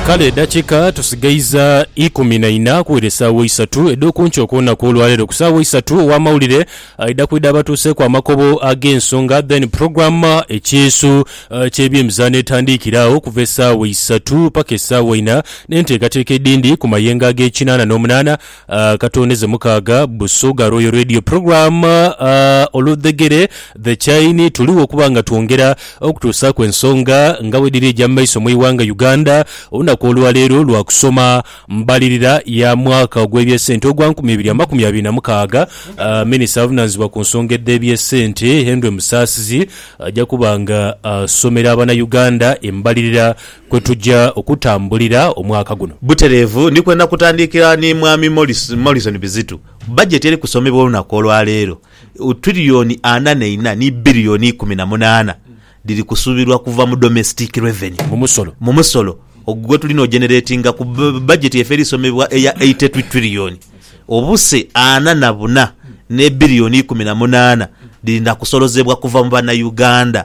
Kale edakika tusigaiza ikumi na ina kuwera esaawa eisatu edhokunkyo okwonaku olwalero kusaawa eisatu owa mawulire aidha kwidha abatuuseku amakobo agensonga then program ekyeeso kyebyemizano etandiikira agho okuva esaawa eisatu paka esaawa ina nenteekateeka edindi kumayengo agekinana nomunana Akatondeze mukaaga Busoga Royal Radio Program Oludhegere The Chain tuligho okuba nga twongera okutuusaaku ensonga nga bwedhiri eja mu maiso mu ighanga Uganda. Olunaku olwaleero lwa kusoma mbalirira ya mwaka ogw'ebyesente ogwa nkumi ibiri amakumi abiri na mukaaga. Minisita avunanizibwa ku nsonga edh'ebyesente Henry Musaasizi aja kuba nga asomera abana Uganda embalirira kwe tuja okutambulira omwaka guno. Butereevu ni kwenda kutandikira ni Mwami Morrison Bizitu. Bajeti eri kusomebwa olunaku olwaleero, Tuliriyoni ana neina ni Biriyoni ikumi na munaana dhiri kusuubirwa kuva mu Domestic Revenue, mu musolo, gwe tuli nojeneretinga ku bajeti yaife eri somebwa eya Eighty two Tuliriyoni obuse ana na buna ne Biriyoni ikumi na munaana dhiri na kusolozebwa kuva mu Banauganda.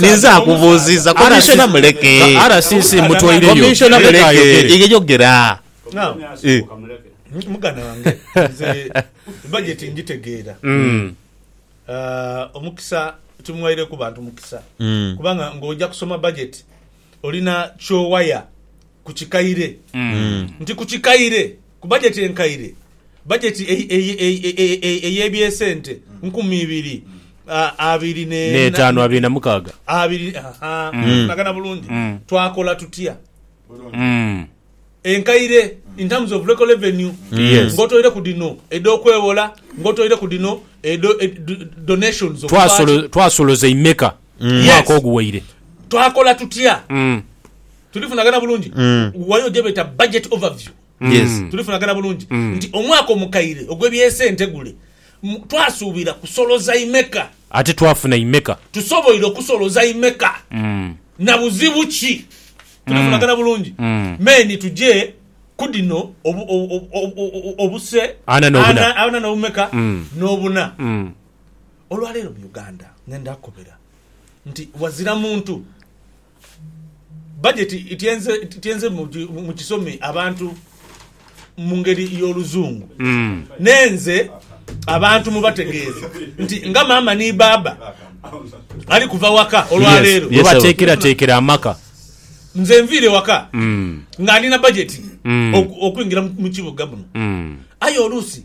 Ninze akubuuziza komishona muleke. RCC mutwaireyo. Komishona muleke yeyogera. Now, Eh. mu- muganda wange nze bajeti ngitegeera Mm. Ah, omukisa timwaireku bantu mukisa Mm. kubanga ng'oja kusoma bajeti olina kyowaya ku kikaire Mm. nti ku kikaire Ku bajeti enkaire, bajeti ey'eby'esente nkumi ibiri abiri n'etaanu abiri na mukaaga, tunagana bulungi? Twakola tutya? Enkaire in terms of local revenue ng'otoireku dhino edh'okwewola, ng'otoireku dhino edha donations. Twasoloza imeka? mu mwaka oguwaire. Twakola tutya? Tulifunagana bulungi? Wayo gyebeeta budget overview. Tulifunagana bulungi nti omwaka omukaire ogw'eby'ensi entegule twasuubira kusoloza imeka? Ate twafuna imeka? Tusoboire okusoloza imeka? Na buzibu ki? Tulifunagana bulungi? Main tuje ku dhino, obuse ana n'obumeka n'obuna. Olwaleero mu Uganda ngenda kukobera nti wazira muntu bajeti ityenze mu kisome abantu mu ngeri y'oluzungu n'enze abantu mu bategeeze nti nga maama ni baaba ali kuva waka olwaleero we bateekerateekera amaka. Nze nviire waka nga ndi na bajeti okwingira mu kibuga muno aye oluusi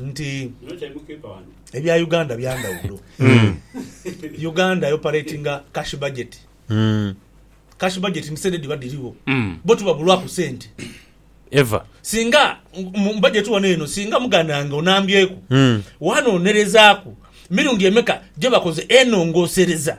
nti ebya Uganda byandawulo. Hmm. Uganda operatinga cash budget. Hmm. Cash budget ni sente diba diriwo. Hmm. Bo tubabulwaku sente. Ever. Singa mbajeti wano eno singa mugananga onambyeku. Hmm. Wano onerezaku mirundi emeka gyebakoze enongosereza.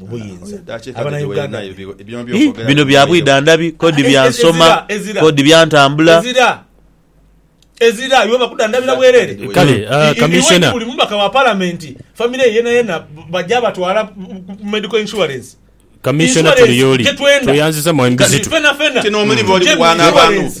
mu buyinza abanauganda bino bya bwidhandhabi kodi bya nsoma kodi bya ntambula ezira iwe bakudandabira bwerere kale ah, kamisona buli mubaka wa parliament family ye yena yena bajja batwala medical insurance kamisona tuli yoli tweyanziza mwami bizito fena fena kino omulimo oli kuwana abantu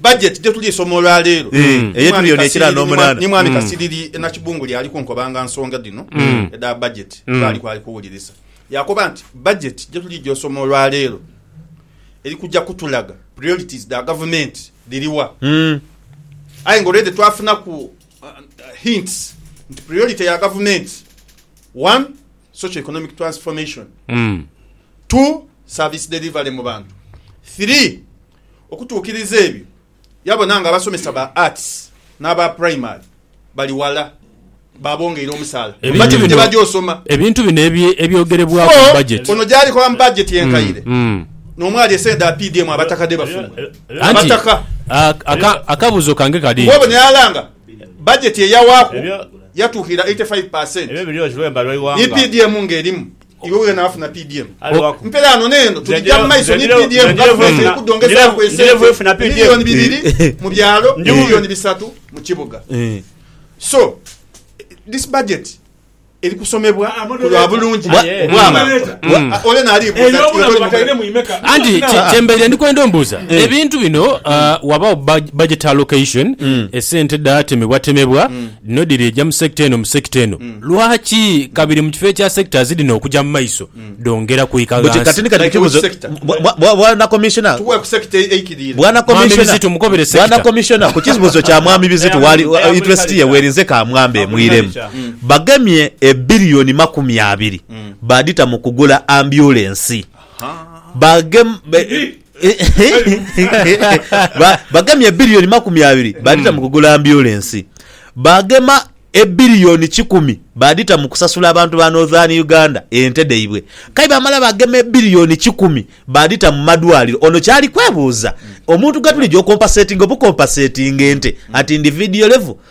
Bajeti je tuli soma olwa leero eye tuli ono ekira n'omunana. Ni Mwami Kasiriri e Nakibunguli ali kunkobanga nsonga dhino edha bajeti twali kwali kuwulirisa. Yakoba nti bajeti je tuliija osoma olwa leero eri kuja kutulaga priorities dha gavumenti dhiri wa. Aye nga already twafunaku hints nti priority ya gavumenti, one, socio-economic transformation, two, service delivery mu bantu, three, Okutuukiriza ebyo, yabona nga abasomesa ba Arts n'aba Primary bali wala, baabongeire omusaala. Ebintu Bajeti bino, tebagya osoma. ebintu bino ebye- ebyogerebwaku mu budget. Ono gyali kola mu bajeti enkaire Mm. n'omwali esente dha PDM abataka dhe bafuna. Anti Abataka. a- aka- akabuuzo kange kali Kuba ono nti yalanga bajeti eyawaaku yatuukirira 85 per cent. Ni PDM ng'erimu. Iwe wena afuna PDM. Mpe ghano n'eno tuligya mu maiso ni PDM nga tuleese okudhongezaaku esente miliyoni bibiri mu byalo, miliyoni bisatu mu kibuga. So, this budget eri kusomebwa ku lwa bulungi bw'abantu. Ole n'alibuuza nti, Iwe toli mughala? Anti kye- kyembaire ndi kwenda ombuuza ebintu bino ah, wabaawo bud- budget allocation esente dhatemebwatemebwa Dhino dhiri eja mu sector eno mu sector eno. Lwaki kabiri mu kifo ekya sectors dhino okuja mu maiso dhongera kwika Buti kati ghansi? ni kati Like which kibuzo sector? bwa- bwa- bwa- bwana commissioner Tuwe ku sector eikiriire. bwana Mwami commissioner Bizitu mukobere bwana sector. commissioner ku kibuzo kya mwami bizitu wali Eya- eya interest ye Bulikalica. werinze ka mwambe mwiremu Bulikalica. bagemye ebilioni makumi abiri badita mu kugula ambulance bagem be- Ba- bagemye ebiliyoni makumi abiri badita mu kugula ambyulensi bagema ebiliyoni kikumi badita mu kusasula abantu ba northern uganda ente dhaibwe kai bamala bagema ebiliyoni kikumi badita mu madwaliro ono kyali kwebuuza omuntu gwetulija okompasetinga obukompasetinga ente at individual level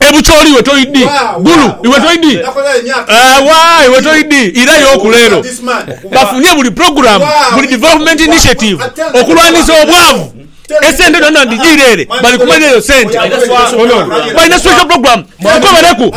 Ebucholi iwe toidi Gulu iwe toidi Ewa iwe toidi Ira yoku lero bafunye buli program buli development initiative okulwanisa obwavu esente dhona dhijire ere bali kumalira yo sente Balina special program tukobereku.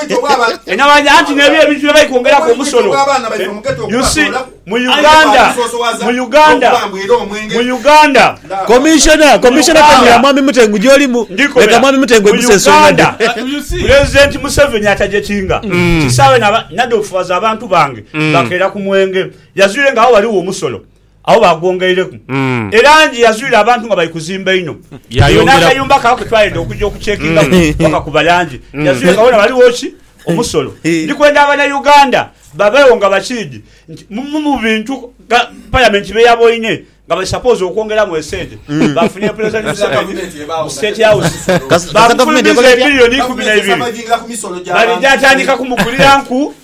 Anti nebyo ebintu bye bali kwongeraku omusono. You see, mu Uganda, mu Uganda, mu Uganda, Commissioner, mu Commissioner Uganda, Kanyira Mwami Mutengu gyolimu. Ndikola. Leka Mwami Mutengu Mu egusa ensonga Uganda, dhe. Kati you see. Pulezidenti Museveni atajekinga kisaawe na ba- nadhofuwaza abantu bange bakeera ku mwenge. Yazwire nga agho ghaligho omusolo. Agho baagwongeireku e langi. Yazuire abantu nga bali kuzimba inho. Eyo n'akayumba kaabwe ke twayenda okuja okucekingaku bakakuba langi. Yazuire nga wona ghaligho ki? Omusolo. Ndi kwenda Abanauganda babeegho nga bakiidhi nti mu bimu mu bintu Palamenti bye yaboine nga bali sapoozi okwongeramu esente, baafuna empulizighanio za Kabinenti mu State House. Baakufulumiza ebilioni ikumi na ibiri. Baligya tandika kumugulira nku.